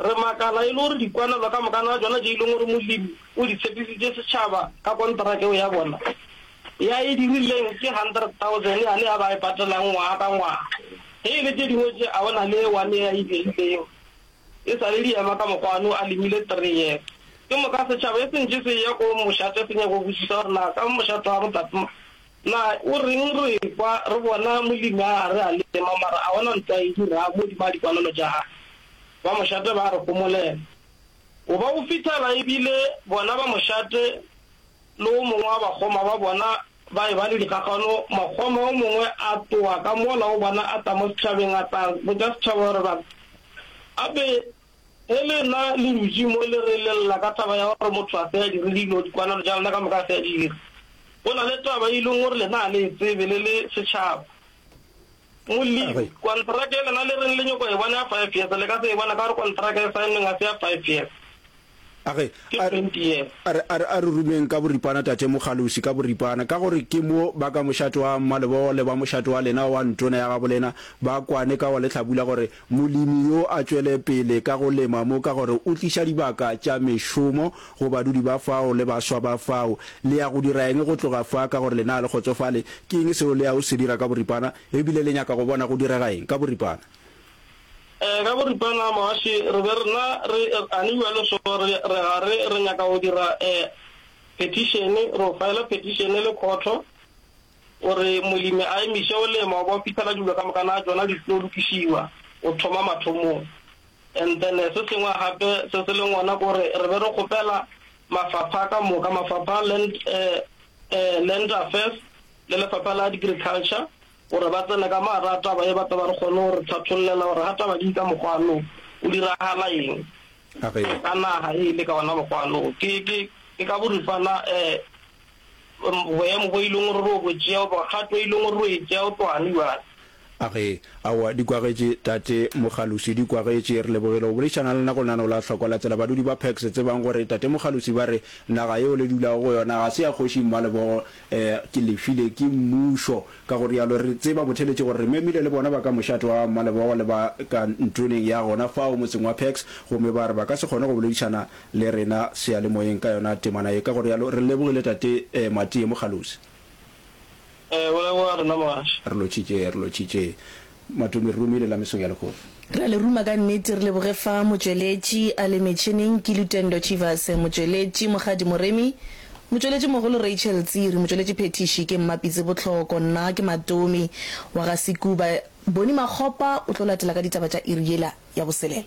Re makala e le gore dikwanelwa ka mokana wa tšona tše e leng gore Molemi o di tshepisitše setšhaba ka konteraka yeo ya bona ya e dirileng ke 100,000 yane ya ba e patelang ngwaga ka ngwaga, ge e le tše dingwe tše a go na le one ye a e beileng e sa le di ema ka mokgwa one o a lemile three years. Ke moka setšhaba e sentše se eya ko mošate se nyaka go botšiša gore na ka mošate wa go tate Na o reng re ekwa re bona Molemi a re a lema mara a gona ntho a e dirago godimo ga dikwalelo tša gagwe? Ba mošate ba a re homolela. O ba o fithara e bile bona ba mošate le o mongwe wa bakgoma ba bona ba e ba le dikgakgano. Mokgoma o mongwe a tloga ka mola o bona a tla mo setšhabeng a tla botša setšhaba gore batho a be Ge le na le dutše mo le re le lla ka taba ya gore motho a se a dire dilo, dikwanano tša lena ka moka a se a di dira, go na le taba e leng gore lena ga le e tsebe le le setšhaba. Molemi, Kontraka ye lena le reng le nyoko e bona ya five years, le ka se e bona ka gore kontraka e saennweng ga se ya five years. A re, A re, a re, a re, a re rumeng ka boripana Tate Mokgalusi, ka boripana, ka gore ke mo ba ka mošate wa mmalebogo le ba mošate wa lena wa ntona ya gabolena ba kwane ka wa lehlabula gore molemi yo a tšwele pele ka go lema mo ka gore o tliša dibaka tša mešomo go badudi ba fao le baswa ba fao. Le ya go dira eng go tloga fa ka gore lena a le kgotsofale ke eng seo le ya go se dira ka boripana ebile le nyaka go bona go direga eng ka boripana? Ka boripana Moaši re be rena re ani bjalo so re re ga re re nyaka go dira petišene, re o faela petišene le khotho gore molemi a emiše go lema go fihlela dilo ka moka na tšona di tlo lokišiwa go thoma mathomong. And then se sengwe gape se se leng gona ke gore re be re kgopela mafapha ka moka, mafapha a Land Land Affairs le lefapha la Agriculture Gore ba tsene ka mo gare ga taba ye ba tle ba re kgone go re thathollela gore ga taba di ka mokgwa lo go diragala eng ka naga e le ka ona mokgwa lo. Ke, ke, ke ka boripana um boemo bo e leng gore ro bo tšea goba kgato e leng gore ro e tšea go tloga bjale. Age, Aowa, di kwagetše, Tate Mogalusi, di kwagetše. Re lebogile go boledišana le lena go lenaneo la Hlokwa la Tsela. Badudi ba Pax, tsebang gore Tate Mogalusi ba re naga yeo le dulago go yona ga se ya Kgoši Mmalebogo, Ke le file ke Mmušo. Ka go realo re tseba botheletše gore re memile le bona ba ka mošate wa Mmalebogo le ba ka ntlwneng ya gona fao motseng wa Pax gomme ba re ba ka se kgone go boledišana le rena seyalemoyeng ka yona temana ye. Ka go realo re lebogile Tate Matie Mogalosi. Re leboga rena Mogale. Re lotšhitše, re lotšhitše. Matome Rumi le la Mesong ya Lehono. Re a le ruma ka nnete, re leboge fa motšweletši a le metšhineng ke Lutendo Chivas, motšweletši Mokgadi Moremi, motšweletši mogolo Rachel Tsiri, motšweletši phethiši ke Mma Pitse Botlhoko, nna ke Matomi wa ga Sekuba. Boni Makgopa o tlo latela ka ditaba tša iri yela ya boselela.